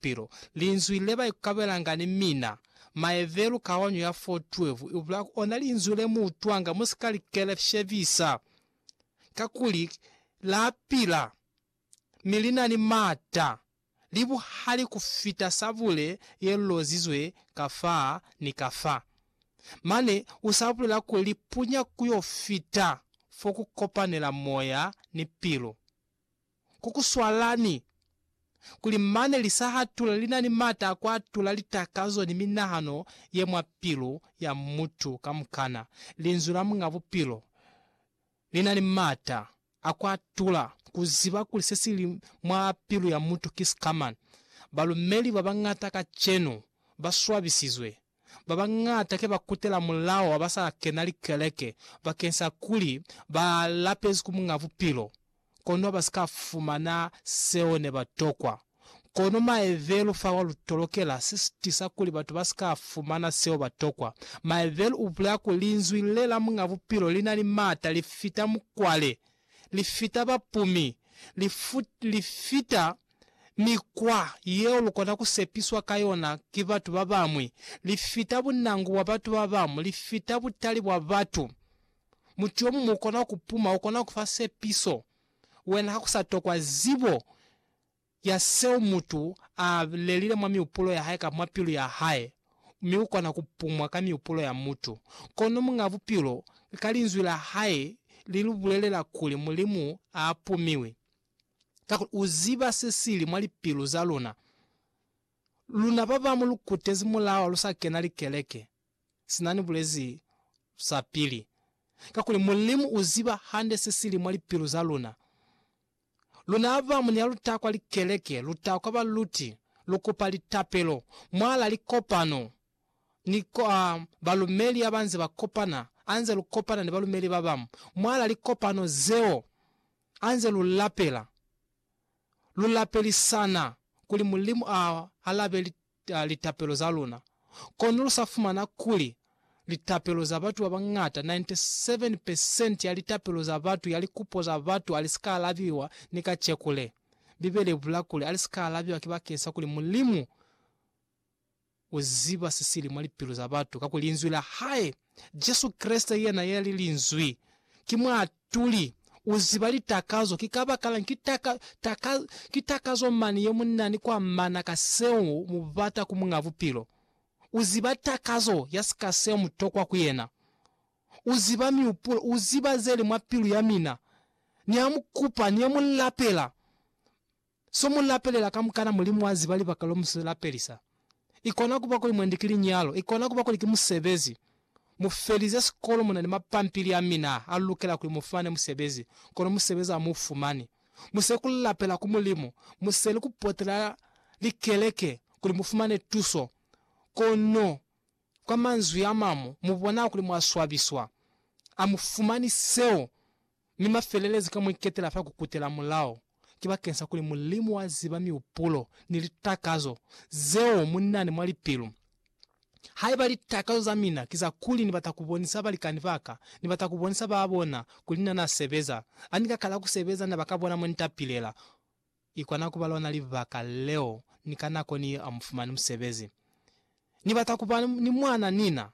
Bupilo, Linzwi le ba ikukabelanga ni mina. Maevelu kaonyo ya fo 12 i bula ku ona linzwi le mu utwanga mu si ka li keleshebisa, kakuli la pila, mi li na ni m'ata, li buhali ku fita sabule ye lozizwe ka fa ni ka fa. Mane u sa bulela kuli li punya ku yo fita fo ku kopanela moya ni pilu. ku ku swala ni kuli mane li sa hatula li na ni m'ata a ku atula litakazo ni minahano ye mwa pilu ya mutu kamukana. Linzwi la Muñ'a Bupilo li na ni m'ata a ku atula ku ziba kuli se si li mwa pilu ya mutu ki sikamañi. Balumeli ba bañata kacenu ba swabisizwe ba bañata ke ba kutela mulao wa ba sa kena likeleke bakeng sa kuli ba lapezi ku Muñ'a Bupilo, kono ba si ka fumana seo ne ba tokwa. Kono maebelu fa wa lu tolokela si tisa kuli batu ba si ka fumana seo ba tokwa. Maebelu u bulela kuli Linzwi le la Muñ'a Bupilo li na ni m'ata, li fita mukwale, li fita bapumi, li fita Mikwa yeo lukona kusepiswa ka yona ki batu babañwi, lifita bunangu bwa batu babañwi, lifita butali bwa batu. Mutu yomuñwi ukona kupuma, ukona kufa sepiso, wena hakusa tokwa zibo ya seo mutu a lelile mwa miupulo yahae kamba mwa pilu yahae, mi ukona kupumwa ka miupulo ya mutu. Kono Muñ'a Bupilo ka Linzwi lahae lilubulelela kuli Mulimu aapumiwi. kakuli u ziba se sili mwa lipilu za luna. Luna babamu lu kutezi mulawa lu sa kena likeleke, sina ni bulezi sa pili, kakuli Mulimu u ziba hande se sili mwa lipilu za luna. Luna abamu ni ha lu ta kwa likeleke, lu ta kwa baluti, lu kupa litapelo mwala likopano ni kwa balumeli haba nze ba kopana, anze lu kopana ni balumeli babamu mwala likopano zeo. Anze lu lapela, lu lapelisana kuli Mulimu a alabe litapelo za luna. Kono lu sa fumana kuli litapelo za batu ba bañata, 97 percent ya litapelo za batu ya likupo za batu ali sika alabiwa ni kacekule. Bibele ibula kuli ali sika alabiwa ki bakeng sa kuli Mulimu. U ziba sesili mwa lipilu za batu kakuli Linzwi la Hae, Jesu Kreste, Yena yali Linzwi, ki Muatuli. U ziba litakazo. Ki kabakalañi? Ki taka, taka, ki takazo mane yemunyani kwa mana ka seo mubata ku Muñ'a Bupilo. U ziba takazo ya sika seo mutokwa ku Yena. U ziba miupulo. U ziba zeli mwa pilu yamina. Niamukupa, niamulapela. So mu lapelela kamukana Mulimu a ziba libaka lo mu si lapelisa. I kona kuba kuli mwendi ki linyalo, i kona kuba kuli ki musebezi. Mu felize sikolo mu na ni mapampili a mina a lukela kuli mu fumane musebezi, kono musebezi a mu fumani. Mu seli ku lapela ku Mulimu, mu seli ku potela likeleke kuli mu fumane tuso, kono kwa manzwi a mamu mu bona kuli mwa swabiswa. A mu fumani seo. Mi mafelelezo ka muiketela fa kukutela mulao ki bakeng sa kuli Mulimu wa ziba miupulo ni litakazo zeo munani mwa lipilu. Haiba litakazo za mina ki za kuli ni bata kubonisa balikani baka, ni bata kubonisa ba bona kuli na na sebeza, ani ka kala kusebeza na ba ka bona montapilela, i kona kuba lona libaka leo ni ka nako ni amufumani musebezi. Ni bata kuba ni mwana nina.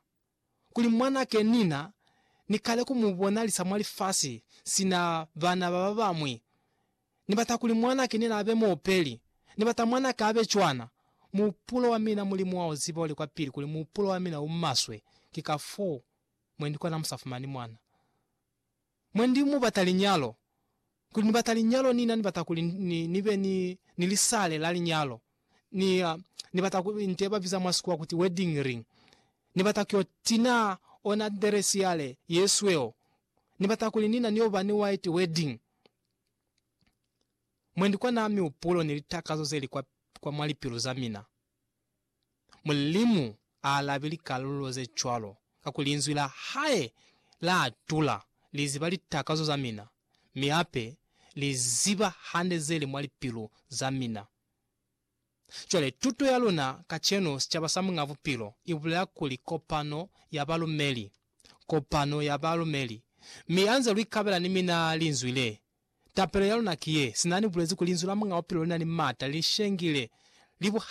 kuli mwanake Nina ni kale ku mu bonalisa mwa lifasi sina bana ba ba bañwi. Ni bata kuli mwanake Nina abe muopeli. Ni bata mwanaka abe cwana. Muhupulo wa mina, Mulimu wa u ziba u li kwa pili kuli muhupulo wa mina u maswe, ki ka foo mwe ni kona mu sa fumani mwana. Mwa ndi mu bata linyalo, kuli ni bata linyalo ni na ni bata kuli ni, ni be ni, ni lisale la linyalo. Ni, ni bata ku, nte ba biza mwa sikuwa kuti wedding ring. Ni bata kyo tina ona dress yale ye sweo. Ni bata kuli ni na ni yo ba ni white wedding. Mwendi kwa na mihupulo ni litakazo ze li kwa, kwa mwa lipilu za mina. Mulimu a alabi likalulo ze cwalo, kakuli Linzwi la hae la atula. Li ziba litakazo za mina, mi hape Li ziba hande ze li mwa lipilu za mina. Cwale, tuto ya luna kacenu, sicaba sa Muñ'a Bupilo, i bulela kuli kopano ya balumeli, kopano ya balumeli. Mi ha nze lu ikabela ni mina Linzwi le, tapelo ya luna ki ye, sina ni bulezi kuli Linzwi la Muñ'a Bupilo li na ni mata, li shengile, li buhali.